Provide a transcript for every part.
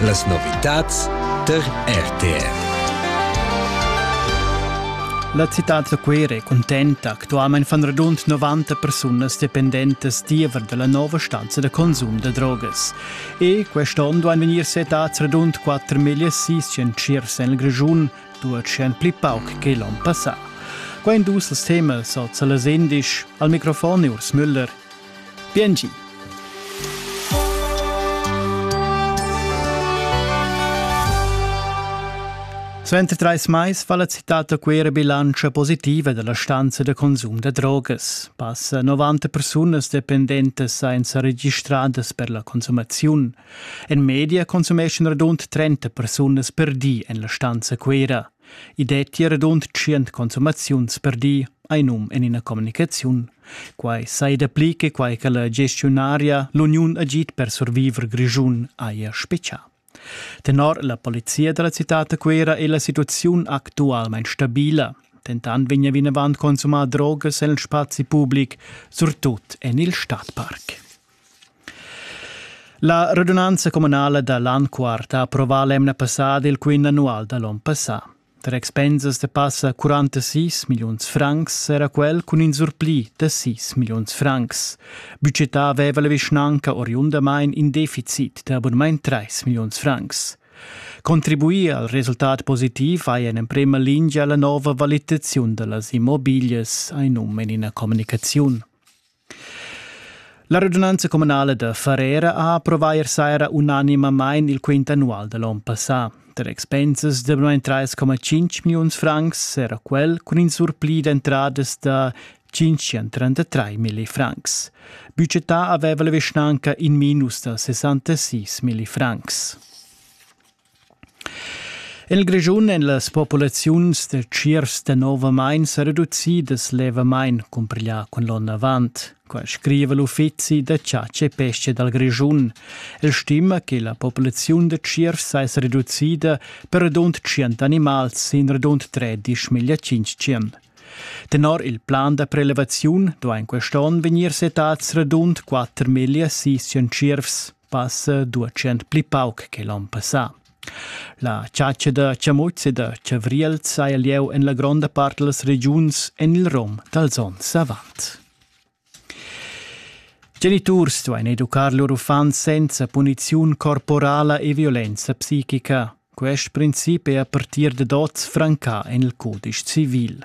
Las novitads tar RTR. La citad da Cuera è contenta. Actualmain fan radund 90 persunas dependentas diever da la nova stanza da consum da drogas. E quest'onn duain vegnir settads radund 4.600 en il Grischun, 200 pli pauc che l'onn passà. Qua in dus als temas, oz a las 11. Al microfon è Urs Müller. Biengi. Suenter trais mais fa la citad da Cuera bilantscha positiva dalla stanza da consum da drogas. Passa 90 persunas dependentas senza registradas per la consumaziun. En media consumeschan radund 30 persunas per di en la stanza Cuera. I detti radund tschient consumaziuns per di, hai num en ina communicaziun. Quai sai dapli che quai che la gestiunaria l'Uniun Agid per survivor Grischun haja spetgà. Tenor la polizia da la citad Cuera è la situaziun actualmain stabila. Dentant vegna vinavant consumà drogas en il spazi public, surtut en il stadparc. La radunanza communala da l'an quart ha approvà l'emna passada il quint annual da l'on passà. Tar expensas da passa 46 milliuns francs era quel cun in surpli da 6 milliuns francs. Budgetà aveva la vischnanca oriundamain in deficit da abonament 3 milliuns francs. Contribuir al resultat positiv vai en emprema lingia la nova valitaziun da las immobiglias, ha num en ina communicaziun. La regiunanza communala da Farera ha approvà ier saira unanimamain il quint annual da l'onn passà. Tar expensas da 3,5 milliuns francs era quel cun in surpli d'entradas da 533 milli francs. Budgetà aveva la vischnanca in minus da 66 milli francs. El Grischun èn las populaziuns da tschiers danovamain sa reducidas levamain, cumpiglià cun l'onn avant. Quai scriva l'Uffizi da chatscha e pesca dal Grischun. El stima che la populaziun da tschiers saja reducida per radund tschient animals sin radund tredisch miglia tschintg. Tenor il plan da prelevaziun duain quest'onn vegnir settads radund quatter miglia sis tschiervs. passa duecent pli pauc che l'on passà. La chatscha da chamutz e da chavriel saja lieu en la gronda part da las regiuns en il rom dals onns avant. Geniturs duain educar lur uffants senza puniziun corporala e violenza psichica. Quest princip è a partir dad oz francà en il cudisch civil.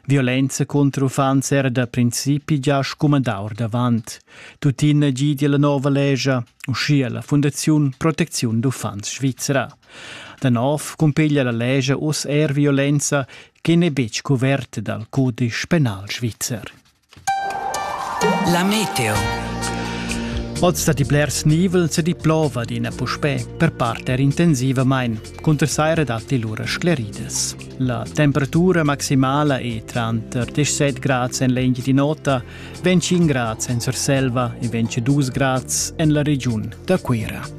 Violenza cunter uffants era da principi gia scumandà ordavant. Tuttina gidia la nova lescha, uschia la Fundaziun Protecziun d'uffants svizra. Da nov cumpiglia la lescha uss er violenza che n'è betg cuverta dal cudisch penal svizzer. La meteo. Oz dat i blers nivel se di plova d'ina puspè per parter intensivamain. Cunter saira datti lura scleridas. La temperatura maximala è tranter 17 grads en l'Engi di Nota, 25 grads en Surselva e 22 grads en la regiun da Cuira.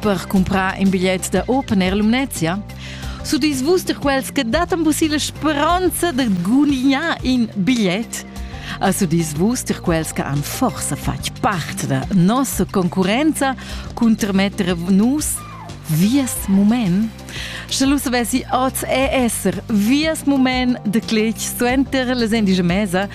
per cumprar in bigliet da Open Air Lumnezia? Sudis vus der quels che datan vos la speranza de gunignar in bigliet? A sudis vus der quels che han forse fatg parte da nostra concurenza cun termetter nus vies moment? Sche lu savessi oz e esser vies moment de cletg suenter les endige mesa,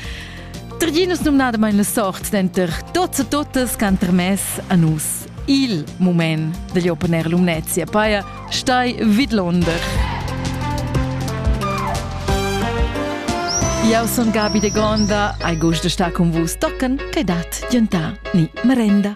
Trginus numnadamain la sort denter tots e totas ch'han termess a nus Il mument degl open air Lumnezia paia stai vidlonder. Jau son Gabi de Gonda, ai gust de sta con vus tocken, che dat giantà ni merenda.